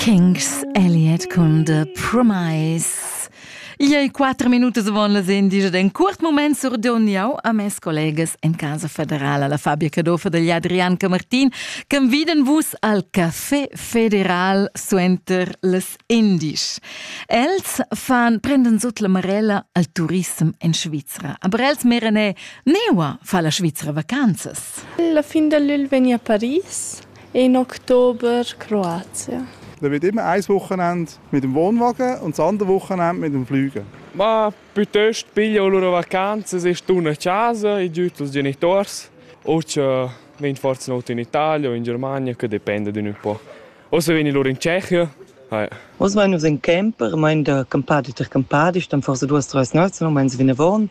Kings Elliot con The Promise. Iei quattro minuti avon las indige d'un curt moment surdon jau a mes collegas en Casa Federala la Fabia Cadofa degli Adrianca Martin che viden vus al Café Federal suenter les indisch. Els fan prenden sut la marella al turism in Svizra. Aber els merene neua fa la Svizra vacanzas. La fin dell'il vegni a Paris In Oktober Kroatien. Dann wird immer ein Wochenende mit dem Wohnwagen und das andere Wochenende mit dem Fliegen. Ma piuttosto piglio loro vacanze, se stun a casa, i giuto als genitors, o che ven forse not in Italia o in Germania, che dipende d'un po'. O se veni loro in Tschechia. Hai. Os meinen uns in Camper, mein der Campadi ter Campadi, stand forse 2 3 Nassen, meinen sie wie eine Wohn.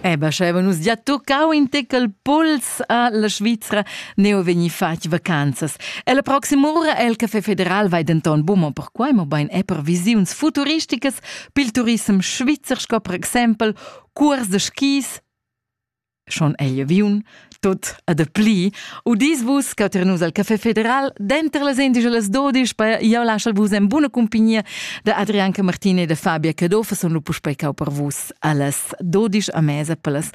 Eh ben, schevan nus gia toccau in tecel puls a la Svizra neu vegni fatg vacanzas. E la proxima ura el Café Federal vai denton buca perquai, mobein è per visiuns futuristicas pil turism svizzer sco per exempel curs de skis, schon egl aviun, Tut e de pli, udis vus che ter nus al Café Federal, denter las indigelas dodisch, per jau laschal vus en buna cumpagnia de Adrianca Martini e de Fabia Cadofa, son lu puspei cau per vus allas dodisch a mesa per las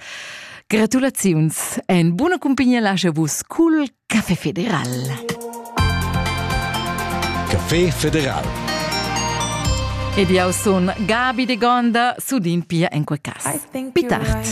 gratulaziuns. En buna cumpagnia lascia vus cul Café Federal. Café Federal. Ed jau sun Gabi de Gonda, sudin pia en quei cas. Pitart.